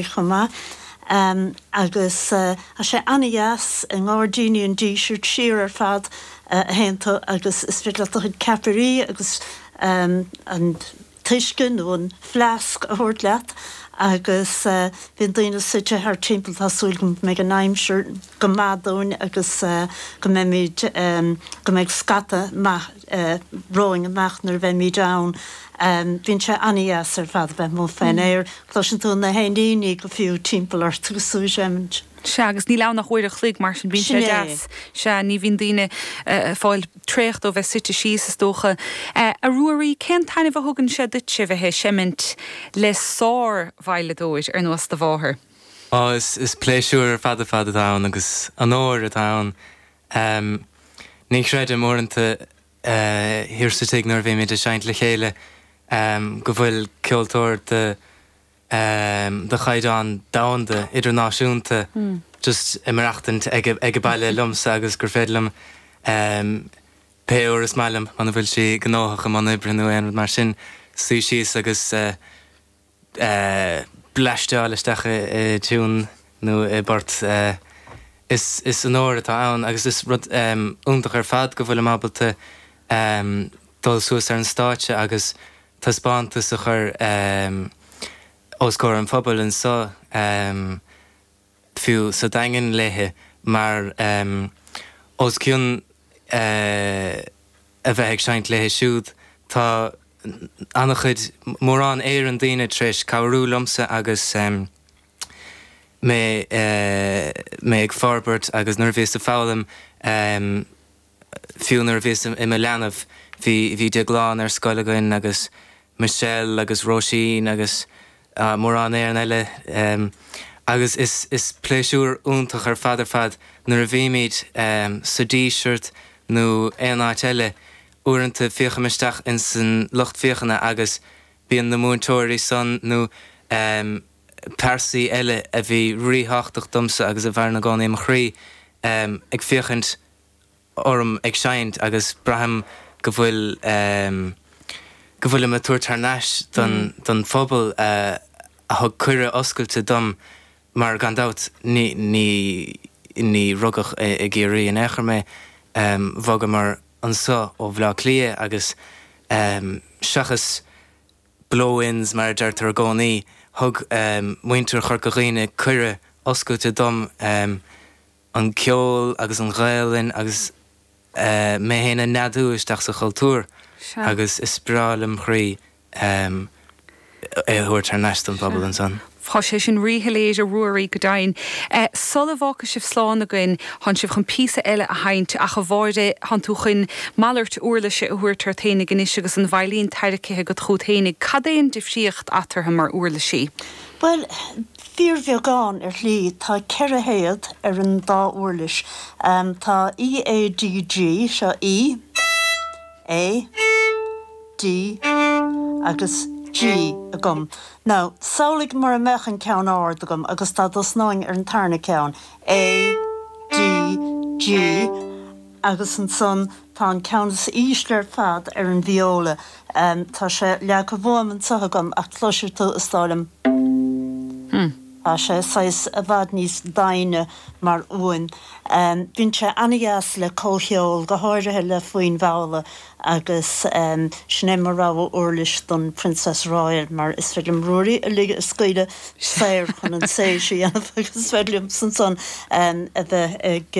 chomh maith agus tá sé an-deas i nGairdíní an Dísirt, siar ar fad a théann tú agus is féidir leat do chuid ceapairí agus an t-uisce nó an fleasc a thabhairt leat agus bíonn daoine suite thart timpeall, tá súil agam go mbeidh an aimsir go maith dúinn agus go mbeimid, go mbeidh scata maith. romhainn amach nuair a bheimid ann. Bíonn sé an-deas ar fad a bheith amuigh faoin aer. Cloiseann tú na héiníní go fiú timpeall ort agus tú ag seimint. Sea, agus níl ann ach uair an chloig, mar sin bíonn sé deas. Sea, ní bhíonn daoine fáil traochta ó bheith suite síos, is dócha. A Ruairí, cén taithneamh a thugann sé duitse bheith ag seimint le sár-veidhleadóir ar nós do mháthar? Ó, is pléisiúr ar fad ar fad atá ann agus onóir atá ann Em, ní chreidim, uaireanta, eh, thiar sa tigh nuair a bhímid ag seinnt le chéile, em, go bhfuil ceoltóir de, em, de chaighdeán domhanda, idirnáisiúnta, just ag maireachtaint ag, ag a' baile liomsa agus gur féidir liom, em, pé uair is maith liom, muna bhfuil sí gnóthach i mbun oibre nó aon rud mar sin, suí síos agus, eh, bleaisteáil isteach i dtiún nó i bport. Is onóir atá ann agus is rud iontach ar fad go bhfuilim ábalta dul suas ar an stáitse agus taispeántas a chur os comhair an phobail anseo. fiú sa Daingean léithi mar os cionn a bheith ag seinnt léithi siúd tá ana-chuid, mórán Éireann daoine tar éis cabhrú liomsa agus mé ag forbairt agus nuair a bhíos ag foghlaim. Fiú nuair a bhíos i mo leanbh bhí Déaglán ar scoil againn agus Michelle agus Róisín agus mórán Éireann eile agus is pléisiúr iontach ar fad ar fad nuair a bhímid sa Díseart nó aon áit eile uaireanta féachaim isteach ins an lucht féachana agus bíonn na múinteoirí san nó pearsaí eile a bhí ríthábhachtach domsa agus a mhaireann i gcónaí mo chroí ag féachaint orm ag seinnt agus braithim go bhfuil, em, go bhfuilim ag tabhairt thar n-ais don, don phobal a, a thug cuireadh oscailte dom mar gan dabht ní, ní, ní rugadh i gCiarraí in aon chor mé, em, bhogamar anseo ó Bhleá Cliath agus, em, seachas blow-ins mar a deirtear i gcónaí, thug, em, muintir Chorca Dhuibhne cuireadh oscailte dom, em, an ceol agus an Ghaelainn agus mé féin a neadú isteach sa chultúr agus is breá lem' chroí é a thabhairt thar n-ais don phobal ansan. Tá sé sin rí-shoiléir, a Ruairí, go deimhin. Sul a bhfágfaidh sibh slán againn, tháin sibh chun píosa eile a sheinnt, ach a Mháire, tháin tú chuin malairt úirlise a thabhairt ort fhéinig anois agus an veidhlín tairricithe agat chughat fhéinig. Cad é an difríocht eatarthu mar úirlisí? Bhuel, Fíorbheagán, ar shlí. Tá ceithre théad ar an dá uirlis. Tá E, A, D, G, seo E, A, D agus G agam. Now, samhlaigh mura mbeadh an ceann ard agam agus dá dtosnóinn ar an tarna ceann, A, D, G, agus ansan Tá an ceann is ísle ar fad ar an vióla. Tá sé leagtha uaim anso agam ach cloisfidh tú, is dóigh liom. Tá sé saghas i bhfad níos doimhne mar fhuaim. Bíonn sé an-deas le comhcheol, go háirithe le foinn mhalla agus sin é mo rogha uirlis don Princess Royal mar is féidir liom Ruairí a lig a scaoileadh saor chun an tséis a dhéanamh agus is féidir liomsa ansan a bheith ag